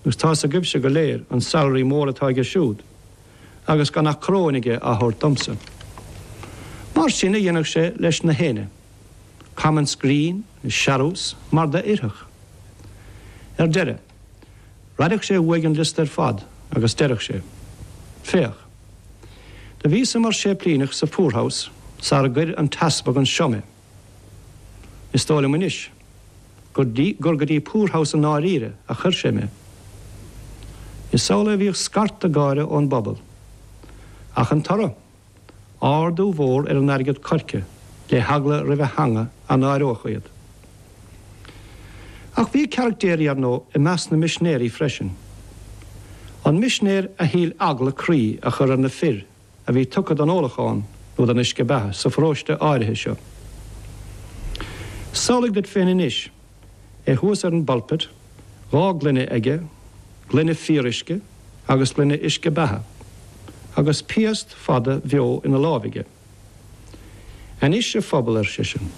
Agus tá's agaibhse go léir an salary mór atá aige siúd, agus gan ach coróin aige á thabhairt domsa. Mar sin a dhéanfadh sé leis na héinne. Comments grinn is searús mar d'oirfeadh. Ar deireadh, raideadh sé uaidh an liosta ar fad agus deireadh sé, Féach. Do bhíosa mar séiplíneach sa Poorhouse sara gcuir an t-easpag anseo mé. Is dóigh liom anois gur go dtí Poorhouse i ndáiríre a chuir sé mé. Is amhlaidh a bhíodh scarta gáire ón bpobal. Ach an toradh? Ardú mhór ar an airgead coirce, le heagla roimh a theanga a náireodh iad. Ach bhí caractéirí, ar ndóigh, i measc na misinéirí freisin. An misinéir a shíl eagla croí a chur ar na fir a bhí tugtha don ólachán nó don uisce beatha sa pharóiste áirithe seo. Samhlaigh duit féin anois é thuas ar an bpulpit, dhá gloine aige, gloine fíoruisce agus gloine uisce beatha, agus piast fada bheo ina láimh aige. Anois, a phobal, ar seisean,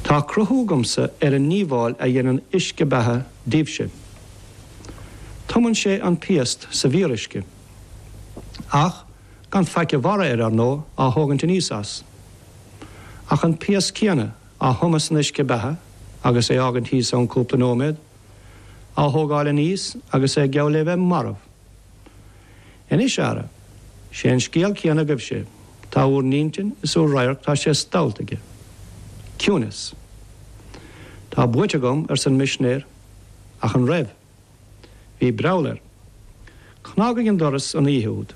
tá cruthú agamsa ar an ndíobháil a dhéanann uisce beatha daoibhse. Tumann sé an piast sa bhfíoruisce. Ach gan faic a bharra air, ar ndóigh, á thógaint aníos as. Ach an piast céanna, á thumadh san uisce beatha agus é fhágaint thíos ann cúpla nóiméad, á thógáil aníos agus é geall le bheith marbh. Anois, a fheara, sé an scéal céanna agaibhse. Tá úr n-intinn is úr radharc tá sé stollta aige. Ciúineas. Tá buaite agam, arsa an misinéir. Ach an raibh? Bhí breall air. Cnag ag an doras an oíche úd,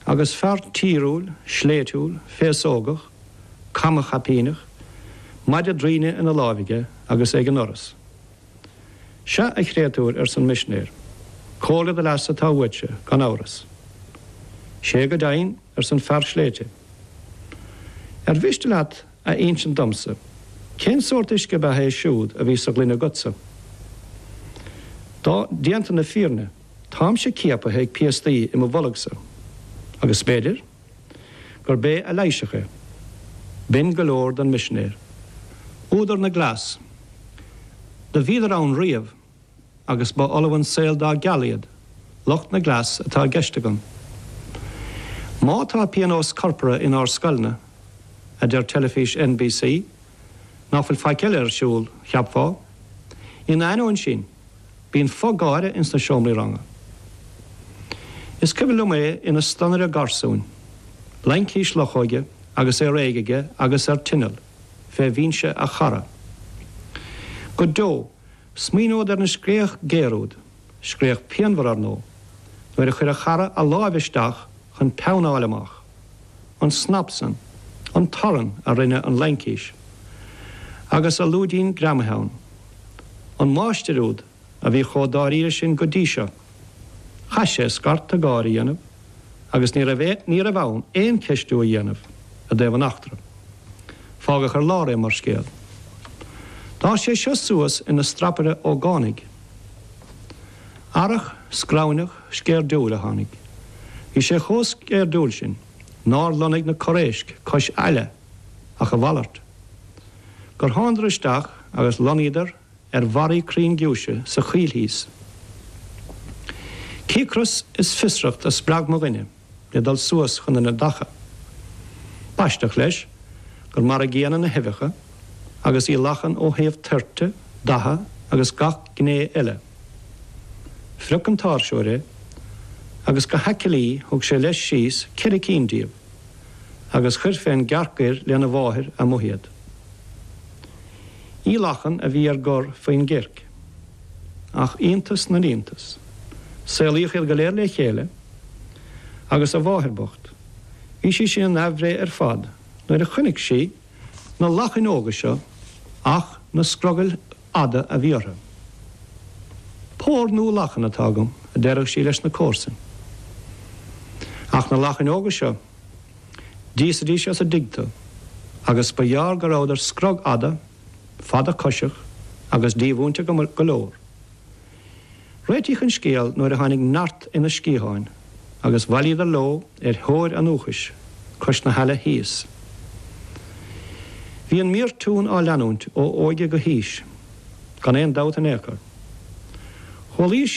agus fear tíriúil, sléibhtiúil, féasógach, camachaipíneach, maide draighin ina láimh aige, agus é ag an ndoras. Sea, a chréatúir, arsa an misinéir, comhairle do leasa atá uaitse, gan amhras. Sea go deimhin, arsa an fear sléibhte. Ar mhiste leat a insint domsa cén sórt uisce beatha é siúd a bhí sa ghloine agatsa. Á, déanta na fírinne, táimse ciapaithe ag piastaí i mo bholgsa, agus b'fhéidir gurb é a leigheasfadh é. B'in go leor don misinéir. Údar na gcleas. Do bhíodar ann riamh. agus ba fholamh an saol dá gceal iad, lucht na gcleas atá i gceist agam. Má tá pionós corpartha inár scoileanna, a deir teilifís NBC, nach bhfuil faic eile ar siúl, cheapfá. In ainneoin sin, bíonn fo-gháire ins na seomraí ranga. Is cuimhin liom é ina stonaire garsúin, laincis luchóige agus é réidh aige agus ar tinneall, fé bhinse a chara. Go deo! Smaoineod ar an scréach géar úd, scréach pianmhar, ar ndóigh, nuair a chuir a chara a láimh isteach chun peann a fháil amach. An snap san. An torann a rinne an laincis agus a lúidín greamaithe ann. An máistir úd a bhí chomh dáiríre sin go dtí seo. Chaith sé scairteadh gáire a dhéanamh agus ní raibh ní raibh ann aon cheistiú a dhéanamh i dtaobh an eachtra. Fágadh ar lár é mar scéal. D'fhás sé seo suas ina strapaire ógánaigh. Earrach scramhneach sceirdiúil a tháinig. Bhí sé chomh sceirdiúil sin nár lonnaigh na corréisc cois aille ach a mhalairt. Gur thánadar isteach agus lonnaíodar ar bharraí crainn giúise sa choill thíos. Cíocras is fiosracht a spreag mo dhuine le dul suas chun na neadacha. B'aisteach leis gur mar a gcéanna na huibheacha, agus uibhe lachan ó thaobh toirte, datha agus gach gné eile. Phrioc an t-áirseoir é, agus go haicillí thug sé leis síos ceithre cinn díobh, agus chuir fén gcearc ghoir lena mháthair amuigh iad. Uibhe lachan a bhí ar gor faoin gcirc, ach iontas na n-iontas, saolaíodh iad go léir le chéile, agus a mháthair bocht, bhí sí sin in aimhréidh ar fad nuair a chonaic sí na lachain óga seo, ach na scrogaill fhada a bhí orthu. Pór nua lachan atá agam, a deireadh sí leis na comharsain. Ach na lachain óga seo. D'íosaidís as an dtigh thú agus ba gheárr go rabhadar scrog-fhada, fadchosach, agus dímhúinte go leor. Réitíodh an scéal nuair a tháinig neart ina sciatháin agus bhailíodar leo ar thóir an uathachais cois na haille thíos. Bhí an mífhortún á leanúint ó óige go haois gan aon dabht in aon chor. Chualaís